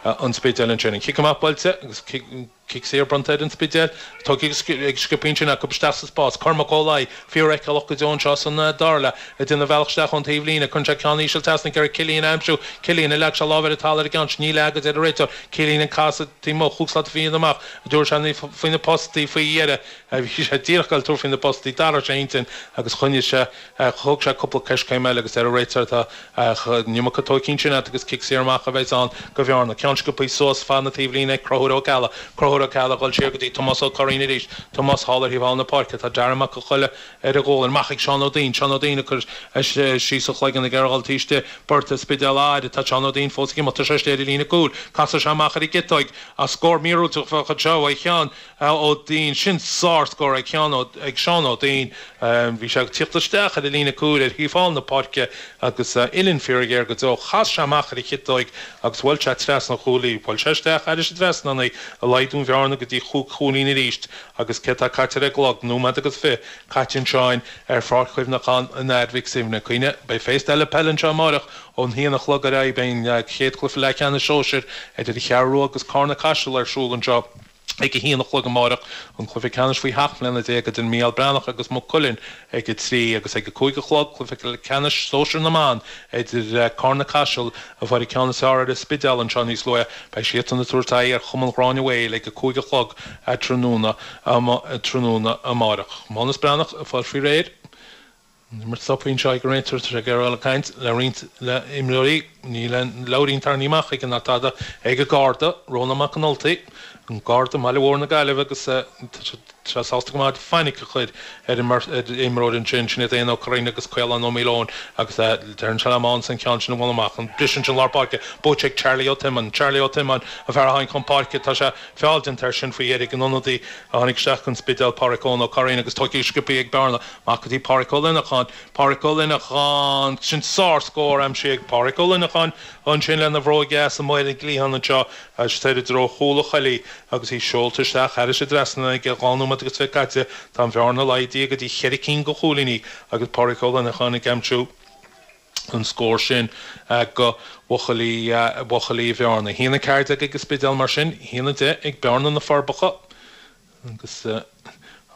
an Spidéil ansin. An cic amach buailte agus cic saor bronnta ar an Spidéil. Tugtha ag sciobtha ansin acu isteach sa spás. Cormac Ó Laidh, fíorfheiceálach go deo anseo san dara leath, ag déanamh a bhealach isteach ón taobh líne. Cuireann sé ceann íseal trasna ag iarraidh Cillín a aimsiú. Cillín, ar leag sé lámh ar an talamh ar an gceann sin? Níor leag, a deir an réiteoir. Cillín ag casadh taobh amuigh. Chuaigh sé slat fiáin amach, a dúirt sé, faoi na postaí faoi dheireadh. Bhí sé díreach ag fáil tuairim faoi na postaí. D'athraigh sé a intinn agus choinnigh sé. Ach thóg sé cúpla coiscéim eile agus ar an réiteoir. Ach an iomarca tógtha ansin aige agus cic saor amach a bheidhs ann go Bhearna. Ceann sciobtha suas feadh na taobhlíne ag Conchúr Ó Ceallaigh. Conchúr Ó Ceallaigh ag dul siar go dtí Tomás Ó Curraoin arís. Tomás thall ar thaobh thall na páirce. Tá Darren Mac Con Choille ar a ghualainn. Amach ag Seán Ó Duinn. Seán Ó Duinn ag cur síos a chloigeann ag iarraidh a dhul taobh istigh de bheirt an Spidéil atá air. Tá Seán Ó Duinn fós ag imeacht. Tá sé istigh ar an líne cúil. Casfaidh sé amach ar an gciotóig. Ach scór míorúilteach a bheadh anseo ó Sheán. Ó Duinn. Sin sárscór ag Seán Ó ag Seán Ó Duinn. Bhí sé ag tíocht isteach ar an líne cúil ar thaobh thall na páirce agus uillinn fíorghéar go deo. Chas sé amach ar a chiotóig agus bhuail sé trasna an chúil í. Bhuail sé isteach thar an trasnán í, ag laghdú an bhearna go dtí chúig chúilín arís agus céard atá caite ar an gclog? Nóiméad agus fiche caite anseo ar Pháirc Chuimhneachán an Athar Mhic Suibhne. Cuimhnigh, Beidh féasta eile peil anseo amáireach ón haon a chlog ar aghaidh. Beidh an chéad chluiche leathcheannais sóisir idir An Cheathrú Rua agus Cárna Caiseal ar siúl anseo. ag a haon a chlog amáireach, an cluiche ceannais faoi sheacht mbliana déag idir Mícheál Breathnach agus Maigh Cuilinn ag a trí, agus ag a cúig a chlog, cluiche ceannais sóisear na mban idir Cárna-Caiseal, a fuair an ceann is fearr ar an Spidéal anseo níos luaithe. Beidh siadsan ag tabhairt aghaidh ar Chumann Ghráinne Mhaoil ag a cúig a chlog tráthnóna amáireach. Mánus Breathnach, a fuair faoi réir, Imirt stoptha anseo ag an réiteoir. Tá sé ag iarraidh a dhul ag caint le roinnt de na himreoirí. Níl aon leabhairín tarraingthe amach aige ná tada. Ag an Garda, Rónán Mac an Ultaigh, an Garda i mbaile mór na Gaillimhe agus tá sé sásta go maith fainic a chur ar imreoir ansin, Sinéad Ann Ó Curraoin agus Caolán Ó Maoileoin agus deireann sé le Mánas an ceann sin a bhualadh amach. Briseann sin lár páirce. Buaite ag Charlie Ó Tiomáin. Charlie Ó Tiomáin an fear a tháinig chun páirce. Tá sé feall déanta air sin faoi dheiridh. An t-ionadaí a tháinig isteach gon Spidéal, Páraic Eoin Ó Curraoin agus tógtha sciobtha ag Bearna. Amach go dtí Páraic Ó Luineacháin Páraic Ó Luineacháin Sin sárscór aimsithe ag Páraic Ó Luineacháin ansin lena bhróig dheas amuigh ar an gcliathán anseo agus soir i dtreo chúl na coille agus í seolta isteach thar an trasnán aige dhá nóiméad agus fiche caite. Tá an bhearna laghdaithe go dtí cheithre cinn de chúilíní agus Páraic Ó Luineacháin ag aimsiú an scóir sin go bhuachaillí Bhearna. A haon a ceathair déag ag an Spidéal mar sin, a haon a deich ag Bearna, Na Forbacha, agus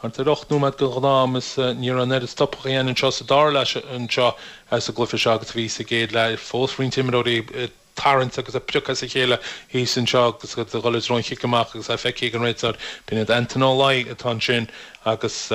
thart ar ocht nóiméad den ghnáth-am, is ní raibh an oiread stopadh ina dhiaidh anseo sa dara leath anseo sa gcluiche seo agus a bhí sa gcéad leath. Fós roinnt imreoirí ag tarraingt agus ag priocadh as a chéile thíos anseo agus ag dul i dtreo an chic amach agus é feicthe ag an réiteoir, b'in é Anton Ó Laoi atá ansin agus.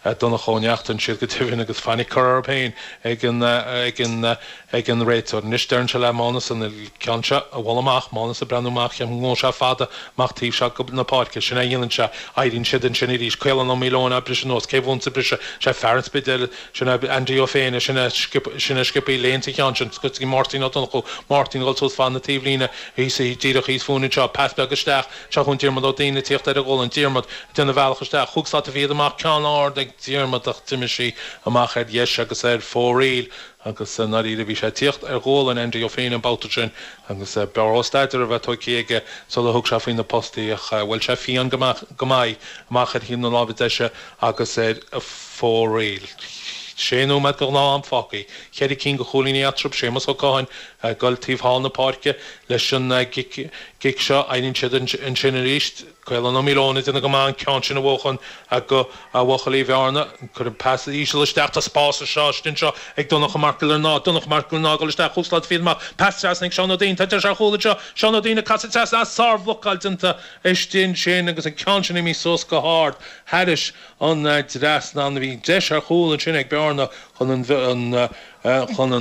A Dhonncha Ó Neachtain, siad go deimhin, agus fainic curtha air féin ag an réiteoir. Anois, deireann sé le Mánas an ceann seo a bhualadh amach, Mánas ag breathnú amach, gabhfaidh sé seo fada amach taobh seo na páirce. Sin é a dhéanann sé. Éiríonn siad ansin arís. Caolán Ó Maoileoin á briseadh anuas. Cé a bhuann sa briseadh? Is é fear an Spidéil, sin é Andy Ó Féinne, sin é a sciob leis an ceann sin. Scoiteann Máirtín Ó Donnchú, Máirtín ag dul suas fad na taobhlíne, thíos, díreach thíos fúinn anseo, pas beag isteach, Seo chugainn Diarmaid Ó Duinn ag tíocht ar a ghualainn. Diarmaid, ag déanamh a bhealach isteach, chúig slata fichead amach ceann ard ag Diarmaid ach d'imigh sí amach ar dheis agus ar fóraoil agus i ndáiríre bhí sé ag tíocht ar ghualainn Andy Ó Féinne an babhta sin agus b'fhearr dhó staidéar a bheith tugtha aige sular thug sé faoi na postaí ach bhuail sé fiáin go maith amach ar thaobh na láimhe deise agus ar fóraoil. Sé nóiméad de ghnáth am fágtha. Cheithre cinn de chúilíní eatarthu. Séamus Ó Catháin ag dul taobh thall na páirce leis an gcic seo, éiríonn siad ansin arís, Caolán Ó Maoileoin ag déanamh go maith an ceann sin a bhuachan do bhuachaillí Bhearna, cuireadh pas íseal isteach tá spás anseo, istigh anseo ag Donnacha Mac Giollarnáth, Donnacha Mac Giollarnáth ag dul isteach chúig slata fichead amach, pas trasna ag Seán Ó Duinn, tá deis ar chúl anseo, Seán Ó Duinn ag casadh trasna ach sárbhlocáil déanta istigh ansin agus an ceann sin imithe suas go hard thairis an dtrasnán, bhí deis ar chúl ansin ag Bearna chun an chun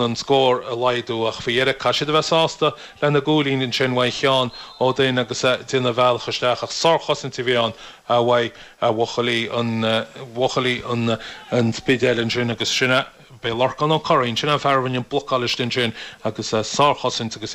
an scór a laghdú ach faoi dheireadh caithfidh siad a bheith sásta lena gcúilín ansin uaidh Sheán Ó Duinn agus é ag déanamh a bhealach isteach ach sárchosaint a bhí ann uaidh bhuachaillí an Spidéil ansin agus sin é, b'é Lorcán Ó Curraoin, sin é an fear a rinne an blocáil istigh ansin agus sárchosaint agus.